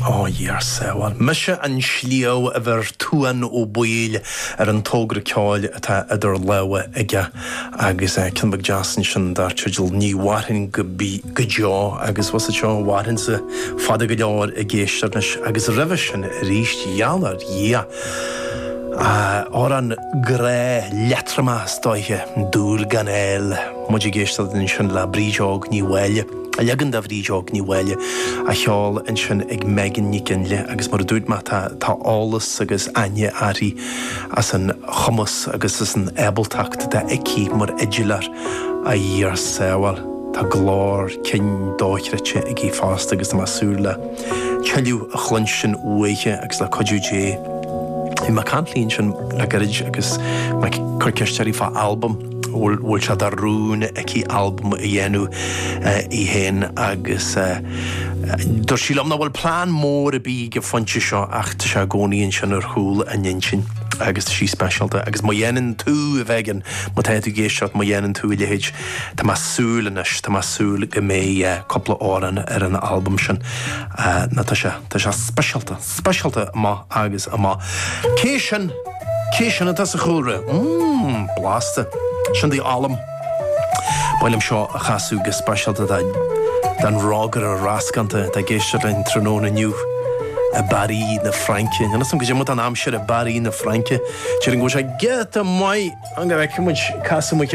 Ó a Dhia ár sábháil. Mise an sliabh a bheir Tuan Ó Baoill ar an tógra ceoil atá idir lámha aige agus é cionn beag deas ansin dar teideal Ní Mhairfinn go Deo agus bhuel is ea seo mhairfinnse fada go leor i gcéist anois agus roimhe sin arís geall ar Dhia Amhrán grá leatromach is dóiche, Dúil gan fháil, muid ag éisteacht ansin le Brídeog Ní Mháille. Leagan de Bhrídeog Ní Mháille á cheol ansin ag Megan Nic Ginlea agus mar a dúirt mé tá eolas agus aithne uirthi as an chumas agus as an ábaltacht atá aici mar fhidileoir a Dhia ár sábháil. Tá glór cinn dochreidte aici fosta agus tá mé ag súil le tuilleadh a chluinstin uaithi agus le cuidiú Dé bhí mé ag caint léi ansin le gairid agus mé ag cur ceiste uirthi fá albam bhfuil sé de rún aici albam a dhéanamh í féin agus dúirt sí liom ná bhfuil plean mór ar bith go pointe seo ach tá sé i gcónaí ansin ar chúl a hintinn agus tá sí speisialta agus má dhéanann tú a Mhegan má tá tú ag éisteacht má dhéanann tú a leithéid tá mé ag súil anois tá mé ag súil go mbeidh cúpla amhrán ar an albam sin nó tá sé tá sé speisialta. speisialta amach agus amach. Cé sin? Cé sin atá sa chúlra? Mmm, blasta. Sin The Ollam. Ba mhaith liom seo a chasadh go speisialta don rógaire rascánta atá ag éisteacht linn tráthnóna inniu i bParis na Fraince. Níl a fhios agam cad é mar atá an aimsir i bParis na Fraince? Déarfainn go bhfuil sé giota maith. An raibh acu muid casadh muid?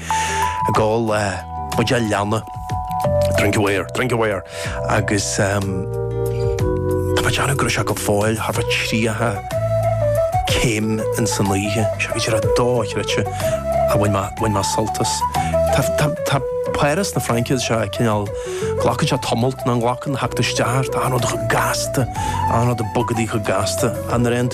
Ag ól buidéal leanna. Drink aware, drink aware. Agus tá mé ag déanamh go raibh sé go fóill thar 30 céim ins an oíche. Seo giota dochreidte a bhain mé, bhain mé sult as. Tá, tá, tá Páras na Fraince is ea cineál, glacann sé tamalt nach nglacann, theacht isteach air tá, achan rud gasta, achan rud ag bogadh go gasta. An raibh tú